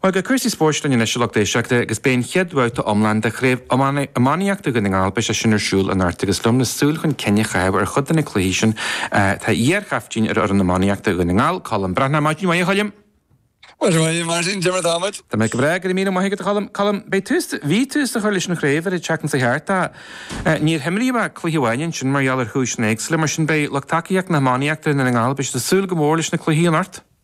Bhuel, beidh cúrsaí spóirt linn anois a lucht éisteachta agus beidh an chéad bhabhta iomlán de Chraobh Iománaíochta Dhún na nGall, beidh sé sin ar siúl anocht agus liom le súil chun cinn a chaitheamh ar chuid de na cluichí sin tá iar-chaftaoin ar fhoireann iománaíochta Dhún na nGall, Colm Breathnach, Maidin mhaith a Choilm! Maidin mhaith a Mháirtín, cad é mar tá muid? Tá mé go breá, go raibh míle maith agat a Choilm. Colm, beidh tús, bhí tús á chur leis an chraobh ar an tseachtain seo chuaigh thart ach níor himríodh ach cluiche amháin ansin mar gheall ar chúiseanna éagsúla, mar sin beidh lucht tacaíochta na hiománaíochta i nDún na nGall, beidh siad ag súil go mór leis na cluichí anocht.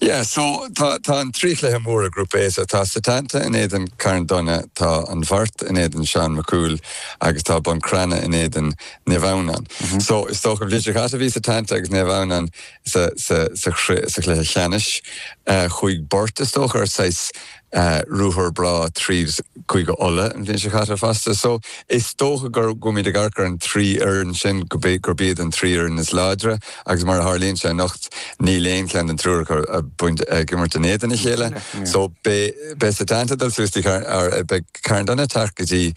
Yeah, so tá tá an trí chluiche móra Grúpa A so tá Setanta in éadan Carn Domhnach, tá An Bheart in éadan Seán Mac Cumhaill agus tá Bun Cranncha in éadan Naomh Adhamhnáin. So is dócha an bhliain seo caite bhí Setanta agus Naomh Adhamhnáin sa sa sa sa chluiche cheannais. Chuaigh Burt is dócha ar saghas ruathar breá tríd Chúige Uladh an bhliain seo caite fosta. So is dócha go mbeimid ag amharc ar an trí fhoireann sin, gurb iad an trí fhoireann is láidre agus mar a tharlaíonn sé anocht níl aon cheann den triúr acu ag imirt in éadan a chéile. So beidh Setanta ag dul suas go dtí, beidh Carn Domhnach ag teacht go dtí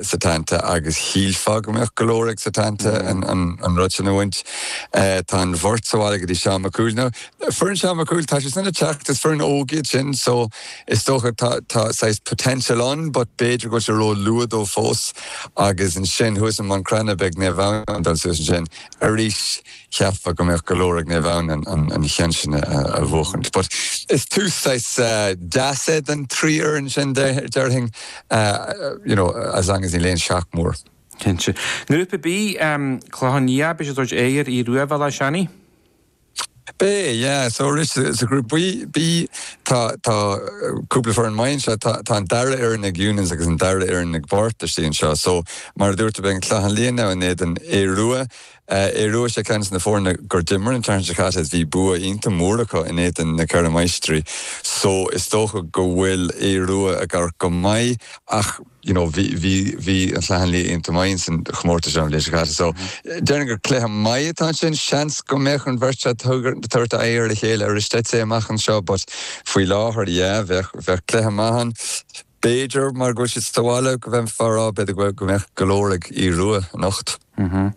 Setanta agus shílfeá go mbeadh go leor ag Setanta an rud sin a bhaint. Tá An Bheart sa bhaile go dtí Seán Mac Cumhaill. Foireann Seán Mac Cumhaill, tá siad sin ag teacht, is foireann óg iad sin so is dócha tá, tá saghas potential ann but b'fhéidir go bhfuil sé ró luath dóibh fós agus ansin thuas i mBun Cranncha beidh Naomh Adhamhnáin ag dul suas ansin arís, cheapfá go mbeadh go leor ag Naomh Adhamhnáin an, an, an cheann sin a, a, a bhuachaint but is tús saghas deas é don trí fhoireann sin de, déarfainn you know as long as níl aon shock mór. Cinnte. I nGrúpa B, Clochán Liath, beidh siad ag tabhairt aghaidh ar Aodh Rua, Béal Átha Seanaidh? Beidh, yeah. So arís sa ghrúpa B, tá, tá cúpla foireann maith anseo. Tá, tá an dara fhoireann ag Eunan's agus an dara fhoireann ag Burt istigh anseo. So, mar a dúirt tú, beidh an Clochán Liath now in éadan Aodh Rua. Eh, Aodh Rua, sé ceann de na foirne gur d'imir an tseachtain seo caite is bhí bua iontach mór acu in éadan Na Ceithre Máistrí. So, is dócha go bhfuil Aodh Rua ag amharc go maith ach, you know bhí bhí bhí an Chlochán Liath iontach maith ins an chomórtas seo an bhliain seo caite so déarfainn gur cluiche maith atá ansin seans go mbeadh an bheirt seo ag tabhairt aghaidh ar a chéile aríst I'd say amach anseo but faoi láthair yeah bheadh bheadh cluiche maith ann b'fhéidir mar go bhfuil siad sa bhaile go bhféadfá a rá b'fhéidir go bhfuil go mbeadh go leor ag Aodh Rua anocht. Mm-hmm.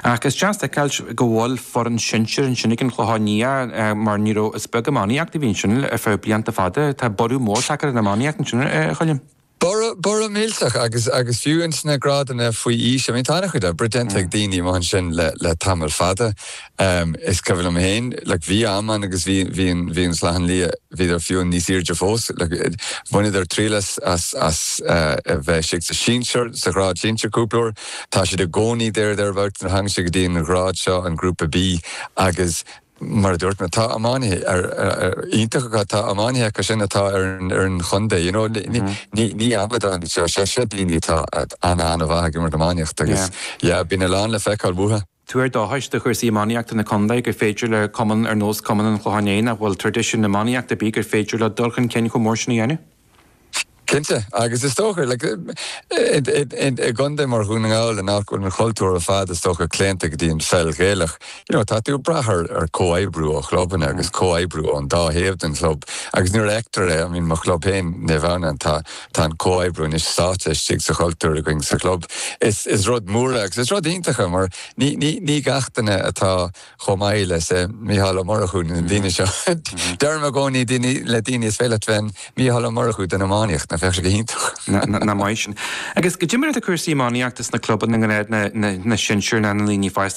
Ach is deas a fheiceáil go bhfuil foireann shinsir ansin ag an Chlochán Liath eh, mar ní raibh is beag iománaíocht a bhí ansin ar feadh blianta fada. Tá borradh mór tagtha ar an iománaíocht ansin eh, a Choilm. Borradh, borradh millteach agus, agus fiú ins na grádanna faoi aois, I mean tá an-chuid oibre déanta ag daoine amuigh ansin le, le tamall fada. Is cuimhin liom féin, like bhí am ann agus bhí, bhí an, bhí an Chlochán Liath, bhíodar fiú níos airde fós, like bhaineadar triail as, as, as a bheith istigh sa sinsear, sa ghrád sinsear cúpla uair. Tá siad i gcónaí there, thereabouts nuair a thagann sé go dtí an ghrád seo, an grúpa B agus Mar a dúirt mé, tá iománaithe iontacha acu, tá iománaithe acu sin atá ar an chontae, you know, ní amadáin iad seo, seo daoine atá an-an-mhaith ag imirt iománaíochta agus, yeah, bíonn a lán le feiceáil uathu. Tuar dóchais do chúrsaí iománaíochta na contae gur féidir le cumann ar nós cumann an Chlocháin Léith, nach bhfuil traidisiún na hiománaíochta ar bith, gur féidir leo dul chun cinn chomh mór sin a dhéanamh. Cinnte, agus is dócha, i gcontae mar Dhún na nGall, in áit go bhfuil an chultúr ar fad, is dócha, claonta go dtí an pheil Ghaelach, you know, tá tú ag brath ar comhoibriú ó chlubanna agus comhoibriú ón dá thaobh den chlub agus nuair a fheictear é, I mean, mo chlub féin, Naomh Adhamhnáin, tá an comhoibriú anois sáite istigh sa chultúr againn sa chlub. Is rud mór é agus is rud iontach é mar ní gach duine atá. chomh maith le Mícheál Ó Murchú ná na daoine seo. Deirim i gcónaí le daoine is féidir leat bheith i do Mhícheál Ó Murchú den iománaíocht, nach mbeadh sé go hiontach? Nach maith sin. Agus cad é mar atá cúrsaí iománaíochta sna clubanna i ngrád na sinsear nó na ndaoine fásta.